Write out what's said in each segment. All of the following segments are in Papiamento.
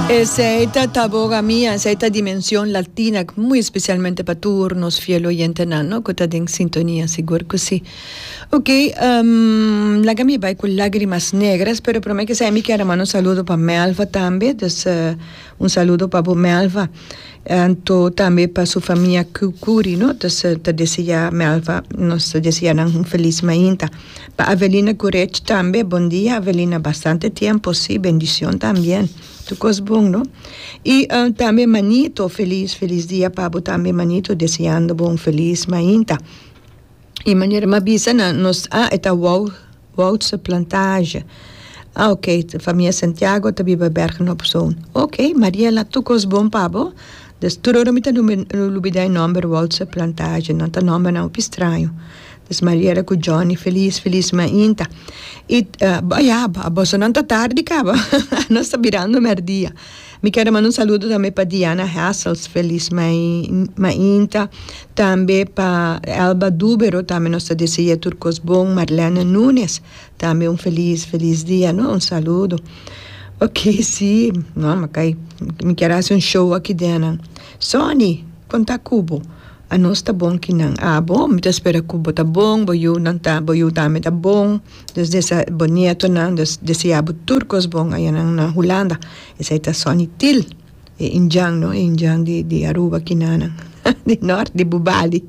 Esei ta Taboga Mia, esei ta Dimension Latina, muy especialmente pa tur nos fiel oyentenan no, cu ta den sintonia, sigur cu si. Ok, ehm, laga mi bay cu lagrimas negras, pero prome que sa e mi kier a manda un saludo pa Melva tambe, dus un saludo pa bo Melva, anto tambe pa su famia Curi, no, ta deseá Melva, nos ta deseá nan un feliz mainta. Pa Avelina Gurech tambe bondia Avelina bastante tiempo si bendición también tur cos bon no y tambe Manito feliz feliz dia pa bo tambe Manito deseando bo un feliz mainta y manera mi a bisa nan nos ah e ta Wou Woudse Plantage ah ok famia Santiago ta biba Bergen op Zoon ok Mariela tur cos bon pa bo des tur ora mi ta lubida e nomber Woudse Plantage nan ta nomber nan hopi straño Miss Mariela cu Johnny feliz feliz mainta y ya boso nan ta tardi caba nos ta birando merdia mi quiero manda un saludo tambe pa Diana Hassels feliz mainta tambe pa Elba Dubero tambe nos ta deseae tur cos bon Marlene Nunes tambe un feliz feliz dia no un saludo oke si mi quiero haci un show aki den nan Sony con ta cubo. A nos ta bon ki nan abo. Mi ta spera ku bo ta bon, bo yunan ta, bo yu tambe ta bon. Dios desea bo nietonan, Dios desea bo tur kos bon aya nan na Hulanda. Esei ta Sonny Til, e indjan no, e indjan di di Aruba kinanan, di nort, di Bubali.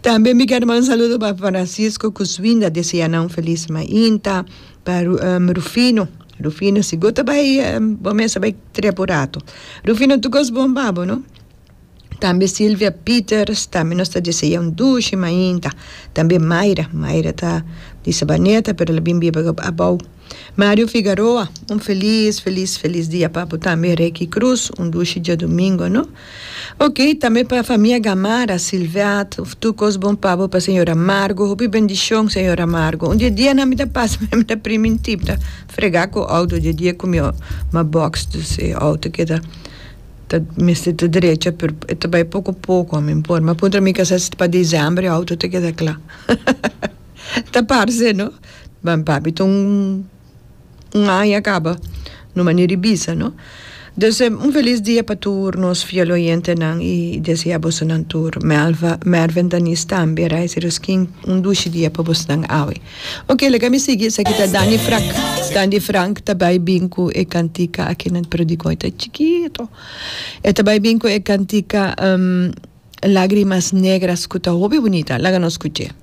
Tambe mi ker manda saludo pa Francisco ku Swinda, desea nan un felis mainta, pa Ru, Rufino, Rufino sigur ta bai, bo mes a bai trep un ratu. Rufino tur kos bon pa bo no. Tambe Silvia Pieters, tambe nos ta deseá un dushi mainta. Tambe Mayra, Mayra ta di Sabaneta pero la bin biba abou. Mario Figaroa, un felis, felis, felis dia pa bo tambe. Reky Cruz, un dushi diadomingo, no? Ok, tambe pa famia Gamarra, Silveat, tur cos bon pa bo, pa señora Margo, hopi bendicion señora Margo. Un di e dianan mi ta pasa mi ta primi un tip, mi ta frega cu outo di e dia cu mi ma box, dus e outo keda. Ta mester ta drecha pero e ta bai poco poco ami por mi a puntra mi kasa si pa diciembre e auto ta keda cla ta parse no ma papi ta un aña a caba no mani revisa no entonces un feliz dia pa tur nos fiel oyentenan y desea bosonan tur Melva Mervin Daniz tambe a reis e roskin un dushi dia pa bosnan awe. Ok laga mi sigui esaki ta Dani Frak Dani Frank ta bai bin ku e kantika akinan pero dikon e ta chikitu e ta bai bin ku e kantika lagrimas negras ku ta hopi bunita laga nos skuch'e.